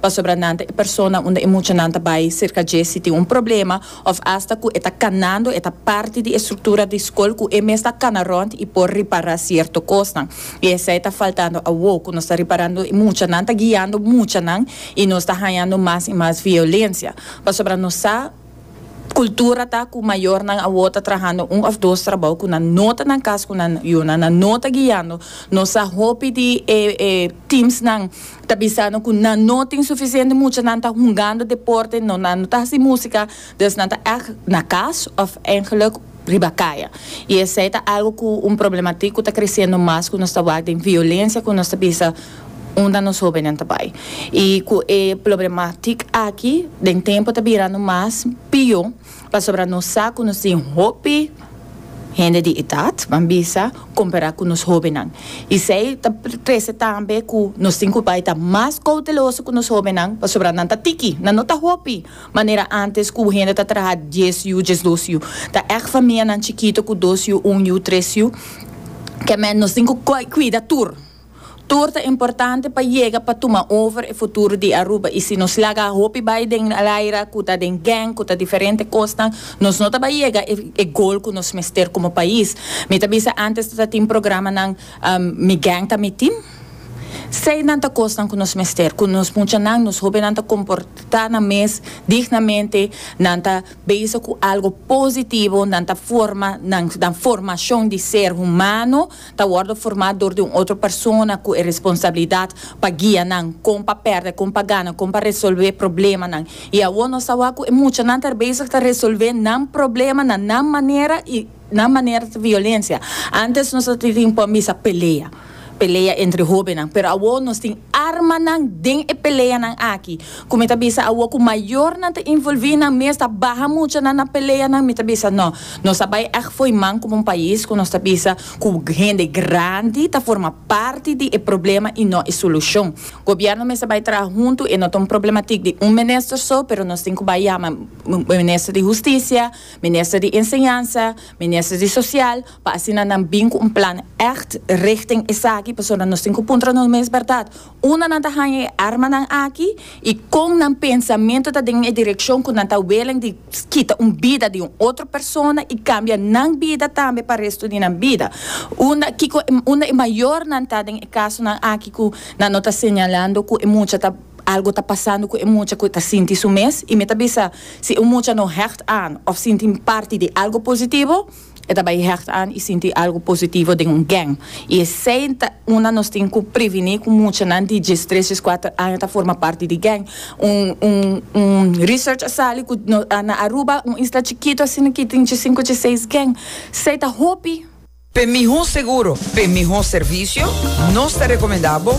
pasobra nan ta e persona unda e muchanan ta bai serka dje si tin un problema òf asta ku e ta kanando e ta parti di e struktura di skol ku e mes ta kana rònt i por ripará sierto kosnan. I esei ta faltando awó ku nos ta riparando e muchanan ta guiando muchanan i nos ta hañando mas i mas violensia pasobra nos sa Cultura ta cu mayornan awor ta trahando un of dos trabao cu nan no ta nan cas cu nan yunan, nan no ta guiando, nos sa hopi di e e teams nan ta bisando cu nan no tin suficiente mucha, nan ta hungando deporte no nan no ta haci musica, dus nan ta ect na cas of eigenlijk riba caya y esey ta algo cu un problematiek cu ta creciendo mas cu nos ta wak den violencia cu nos ta bisa. unda nos hóbennan ta bai. I ku e plobrematik aki den tempu ta birando mas pió pasobra nos sa ku nos tin hopi hende di idat, ban bisa, kompará ku nos hóbennan. I esei ta trese tambe ku nos tin ku bai ta mas kouteloso ku nos hóbennan pasobra nan ta tiki, nan no ta hopi manera ántes ku hende ta traha dies yu, diesdos yu. Ta èg famianan chikitu ku dos yu, un yu, tres yu. Kèmen nos tin ku kuida tur. Tur ta importante pa yega pa tuma over e futuro di Aruba y si nos laga hopi bay den al aira cu ta den gang cu ta diferente cosnan nos no ta bay yega e goal cu nos mester como pais. Mi ta bisa antes ta tin programanan mi gang ta miti. Sey nan ta cosnan cu nos mester cu nos muchanan nos hobennan ta comporta nan mes dignamente nan ta bezig cu algo positivo nan ta forma nan formacion di ser humano. ta wòrdu formá dor di un otro persona ku e responsabilidat pa guia nan kon pa pèrdè, kon pa gana, kon pa resolvè problemanan. I awor nos ta wak ku e muchanan ta bezig ta resolvè nan problema na nan manera i nan manera ta violensia. Ántes nos a tin por misa pelea, pelea entre hóbennan, pero awor nos tin armanan den e peleanan aki. Ku mi ta bisa awo ku mayornan ta involví nan mes ta baha mucha na nan peleanan mi ta bisa no nos a bai èg fo'i man komo un pais ku nos ta bisa ku hende grandi ta forma parti di e problema i no e solushon. Gobièrnu mester bai traha huntu e no ta un problematik di un minister so pero nos tin ku bai yama minister di hustisia, minister di enseñansa, minister di sosial pa asina nan bin ku un plan èg richting esaki pasobra nos tin ku puntra nos mes bèrdat. Unda nan ta haña e armanan aki i kon nan pensamentu ta den e direkshon ku nan ta welen di kita un bida di un otro persona i kambia nan bida tambe pa restu di nan bida? Unda kiko unda e mayornan ta den e kasonan aki ku nan no ta señalando ku e mucha ta algu ta pasando ku e mucha ku ta sinti su mes? I mi ta bisa si un mucha no hègt aan òf sinti parti di algu positivo, E ta bai hecht aan i sinti algo positivo den un gang. I esei ta unda nos tin cu previni cu muchanan di djes, tres djes cuater aña ta forma parti di gang. Un un un research a sali cu na Aruba, un isla chikito asina aki tin dje sinku, dje seis gang. Sei ta hopi. P'e miho seguro, p'e miho servicio, nos ta recomenda bo.